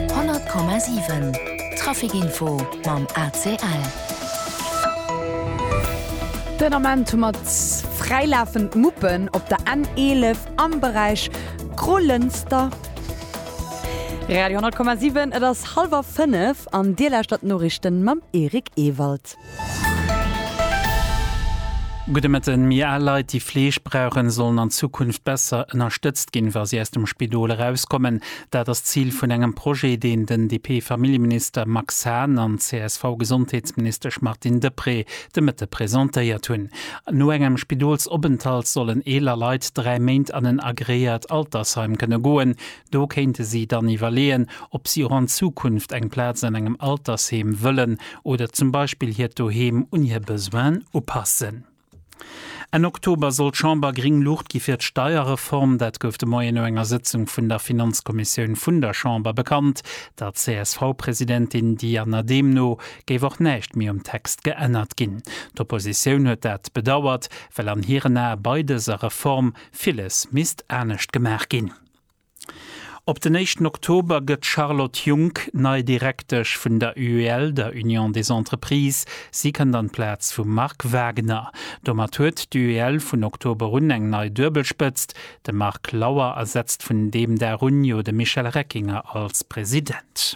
100,7 Trafic info mam ACL. Den Ament hu mer fräilafend Muppen op der N11 am Beräich Grollënster. Radio 100,7 et ass hallwer 5 an Dir lauschtert d'Noriichten mam Eric Ewald. Gudde Mëtten, Méi al Leit, déi Fleeg brauchen, sollen an Zukunft besser ënnerstëtzt ginn, wa si aus dem Spidol erauskommen. Dat ass d'Zil vun engem Projet, deen den DP-Familljeminister Max Hahn an d'CSV-Gesondheetsministesch Martine Deprez de Mëtte presentéiert hunn. No engem Spidolsopenthalt sollen eeler Leit dräi Méint an en agreéiert Altersheim kënne goen. Do kéinte si dann iwwerleeën, ob si och an Zukunft eng Plaz an engem Altersheem wëllen oder zum Beispill hiert Doheem un hir Besoinen upassen. Enn Oktober soll d'Chamber gréng Luucht gi fir d'Steierreform. Dat gouf de Moien no enger Sëtzung vun der Finanzkommissioun vun der Chamber bekannt. Der CSV-Presidentin Diana Dehm no géif och näischt méi um Text geännert ginn. D'Oppositioun huet dat bedauert, well an hiren Ae bei dëser Reform villes misst anescht gemaach ginn. Op den éischten Oktober gëtt d'Charlotte Junck nei Direktesch vun der UEL, der Union des Entreprises. Si kënnt an d'Plaz vum Marc Wagner. Domat huet d'UEL vun Oktober un eng nei Duebelspëtzt, de Marc Lauer ersetzt vun deem Dag un jo de Michel Reckinger als President.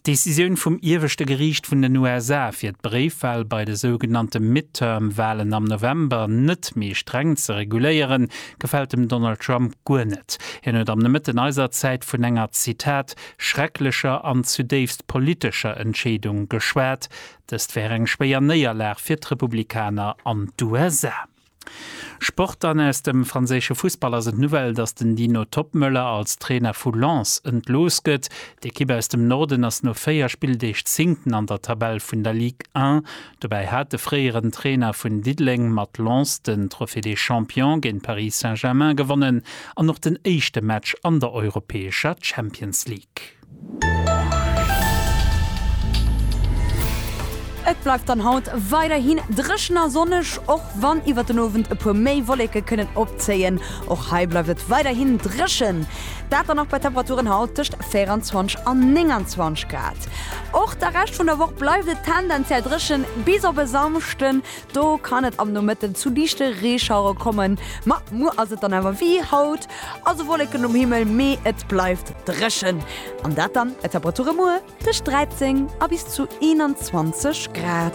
D'Decisioun vum Ieweschte Geriicht vun den USA, fir d'Bréifwal bei de sougenannte Midterm-Walen am November net méi streng ze reguléieren, gefält dem Donald Trump guer net. Hien huet am Nomëtten eiser Zäit vun enger, Zitat, schrecklecher an zudéifst politescher Entscheedung geschwat. Dëst wär eng schwéier Néierlag fir d'Republikaner an d'USA. Sport Dann aus dem franséische Fussball ass et d'Nouvelle, datt den Dino Toppmöller als Trainer vu Lens entlooss gëtt. D'Ekipp aus dem Norden ass no 4 Spilldeeg Zéngten an der Tabell vun der Ligue 1. Dobäi hat de fréieren Trainer vun Diddeleng mat Lens den Trophée des Champions géint Paris Saint-Germain gewonnen an och den éischte Match an der europäescher Champions League. Et bleift dann haut weiderhin dréchen a sonneg, och wann iwwert den Owend e puer méi Wolleke kënnen opzéien. Och hei bleift et weiderhin dréchen, dat dann och bei Temperaturen haut tëscht 24 an 29 Grad. Och de Rescht vun der Woch bleift et tendenziell dréchen, bis op e Samschden, do kann et am Nomëtten zu liichte Reeschauere kommen. Ma muer ass et dann awer wéi haut, Also Wolleken um Himmel, mee et bleift dréchen. An dat dann bei Temperature muer tëscht 13 a bis zu 21 Grad.